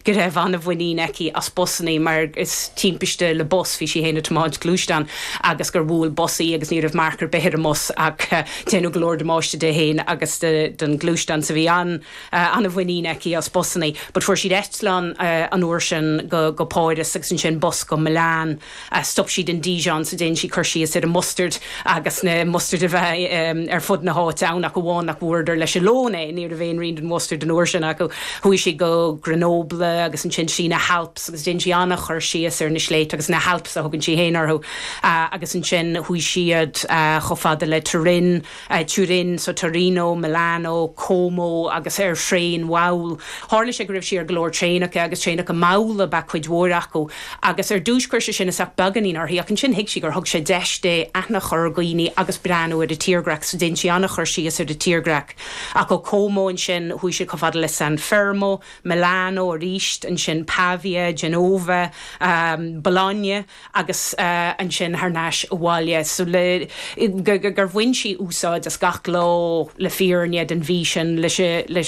go raibh an-mhuinín aici as busanna mar is timpiste le bus bhí sí féin ag tiomáint gluaisteáin agus gur bhuail bus í agus ní raibh marc ar bith ar an mbus ach déanadh go leor damáiste di féin agus don ghluaisteán so bhí an-mhuinín aici as busanna but fuair siad eitleán an uair sin go Páras agus ansin bus go Milan. Stop siad in Dijon so dhein siad cur síos ar an mustard agus na mustard a bheith ar fud na háite ann ach amháin nach bhfuaireadar leis an lón é. Ní raibh aon rian den mhustard an uair sin acu. Chuaigh siad go Grenoble agus ansin trí na hAlps agus dhein sí an-chur síos ar na sléibhte agus na hAlps a thugann sí féin orthu agus ansin chuaigh siad chomh fada le Turin I Turin, so Torino, Milano, Como agus ar thraein mhall. Tharla sé go raibh sí ar go leor traenacha agus traenacha malla ab ea cuid mhór acu agus ar dtús chuir sé sin isteach beagáinín uirthi ach ansin thuig sí gur thug sé deis di aithne a chur ar dhaoine agus breathnú ar an tírdhreach. So dhein sí an-chur síos ar an tírdhreach. Ach ó Como ansin chuaigh sí chomh fada le San Fermo, Milano aríst, ansin Pavia, Genova, Bologna. agus ansin thar n-ais abhaile, so le, gur bhain sí úsáid as gach lá le fírinne den mhí sin leis,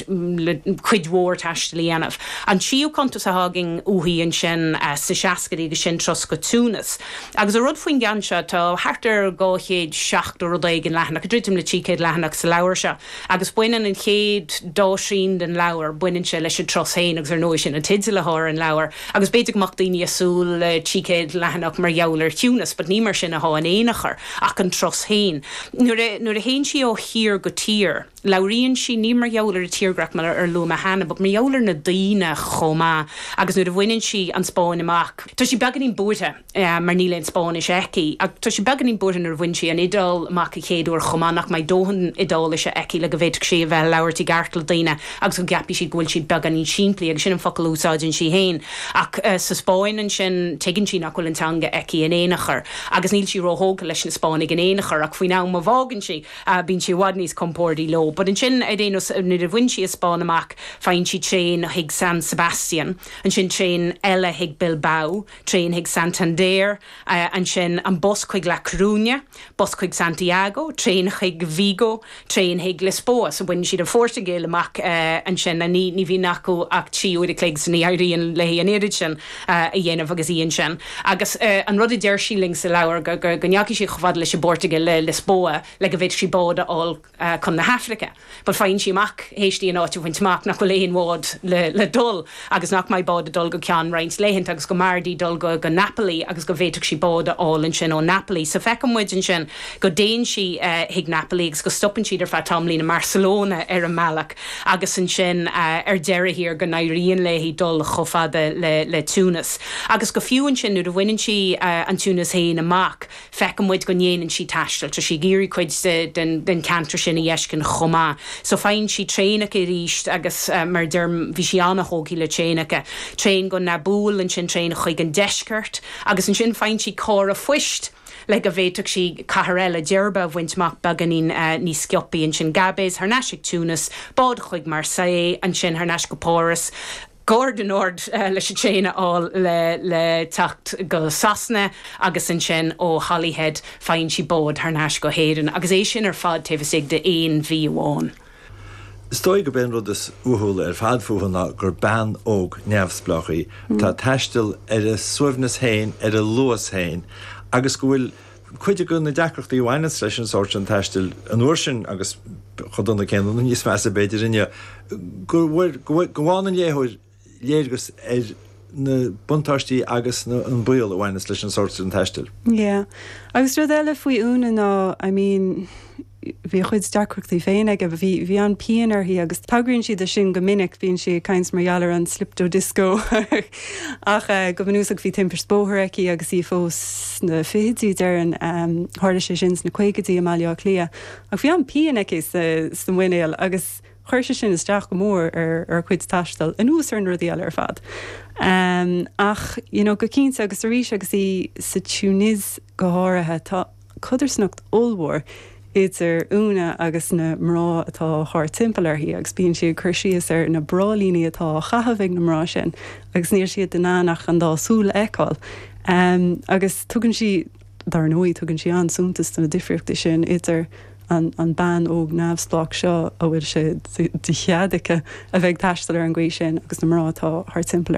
le cuid mhór taistil a dhéanamh. An tríú cuntas a tháinig uaithi ansin sa seascaidí agus sin Turas go Túinis. Agus an rud faoin gceann seo, tá thart ar 270 rud éigin leathanach, ag druidim le 300 leathanach sa leabhar seo, agus baineann an chéad dá thrian den leabhar, baineann sé leis an turas féin agus ar ndóigh sin an teideal atá ar an leabhar, agus b'fhéidir go mbeadh daoine ag súil le trí chéad leathanach mar gheall ar Thúinis, but ní mar sin atá in aon chor, ach an turas féin. Nuair a théann sí ó thír go tír, labhraíonn sí, ní mar gheall ar an tírdhreach mar a luaigh mé cheana, but mar gheall ar na daoine chomh maith, agus nuair a bhaineann sí an Spáinn amach, tá sí beagáinín buartha. mar níl aon Spáinnis aici. Ach tá sí beagáinín buartha nuair a bhain sí an Iodáil amach an chéad uair chomh maith, nach mbeidh dóthain Iodáilise aici le go bhféadfadh sí a bheith ag labhairt i gceart le daoine agus go gceapfaidh siad go bhfuil siad beagáinín simplí, agus sin an focal a úsáideann sí féin. Ach sa Spáinn ansin, tuigeann sí nach bhfuil an teanga aici in aon chor, agus níl sí róthógtha leis na Spáinnigh in aon chor, ach faoin am a bhfágann sí, bíonn sí i bhfad níos compórdaí leo. But ansin, ar aon nós, nuair a bhain sí an Spáinn amach, faigheann sí traein chuig San Sebastian, ansin traein eile chuig Bilbao, Traein chuig Santander, ansin an bus chuig La Coruña, bus chuig Santiago, traein chuig Vigo, traein chuig Lisboa. So baineann siad an Phortaingéil amach ansin and ní bhíonn acu ach trí uair a chloig so ní éiríonn léi an oiread sin a dhéanamh agus í ansin. Agus an rud a deir sí linn sa leabhar go ndeachaigh sí chomh fada leis an bPortaingéil, le Lisboa, le go bhféadfadh sí bád a fháil. chun na hAifrice. But faigheann sí amach, théis di an áit a bhaint amach, nach bhfuil aon bhád le dul agus nach mbeidh bád ag dul go ceann roinnt laethanta agus go mb'fhearr di dul go Napoli agus go bhféadfadh sí bád a fháil ansin ó Napoli. So feiceann muid ansin go dtéann sí chuig Napoli agus go stopann siad ar feadh tamaillín i mBarcelona ar an mbealach agus ansin ar deireadh thiar go n-éiríonn léi dul chomh fada le Tunis. Agus go fiú ansin nuair a bhaineann sí an Tunis féin amach, feiceann muid go ndéanann sí taisteal, tá sí ag iarraidh cuid den cheantar sin a fheiscint chomh maith. So faigheann sí traenacha arís agus mar a deirim, bhí sí an-tógtha le traenacha. Traein go Nabeul, ansin traein chuig an deisceart agus ansin faigheann sí carr an phoist le go bhféadfadh sí cathair eile, Djerba, a bhaint amach beagáinín níos sciopaí. Ansin Gabes, thar n-ais go Tunis, bád chuig Marseille, ansin thar n-ais go Páras. Gare du Nord leis an traein a fháil le teacht go Sasana agus ansin ó Holyhead faigheann sí bád thar n-ais go hÉirinn agus é sin ar fad taobh istigh de aon mhí amháin. Is dóigh gurb é an rud is uathúla ar fad fúithi ná gur bean óg neamhspleách í atá ag taisteal ar a suaimhneas féin, ar a luas féin agus go bhfuil Cuid de na deacrachtaí a bhaineanns leis an sórt sin taistil an uair sin, agus chomh dona céanna nó níos measa b'fhéidir inniu, go bhfaigheann an léitheoir léargas ar na buntáistí agus an baol a bhaineanns leis an sórt sin taistil. Yeah. Agus rud eile faoi Úna ná, I mean, bhí a cuid deacrachtaí féin aici, bhí an-phian uirthi agus tagraíonn sí do sin go minic, bíonn sí ag caint mar gheall ar an slipped disc ó ach go bunúsach bhí timpist bóthair aici agus í fós sna fichidí, déarfainn, tharla sé sin sna caogaidí i mBaile Átha Cliath, ach bhí an-phian aici sa mhuinéal agus chuir sé sin isteach go mór ar a cuid taistil, anuas ar na rudaí eile ar fad. Ach you know go cinnte agus arís agus í sa Túinéis go háirithe, tá. codarsnacht ollmhór idir Úna agus na mná atá thart timpeall uirthi agus bíonn sí ag cur síos ar na bráillíní atá á gcaitheamh ag na mná sin agus níl siad in ann ach an dá súil a fheiceáil agus tugann sí, dár ndóigh, tugann sí an-suntas do na difríochtaí sin idir an an bean óg neamhspleách seo a bhfuil sé de chead aici a bheith ag taisteal ar an gcaoi sin agus na mná atá thart timpeall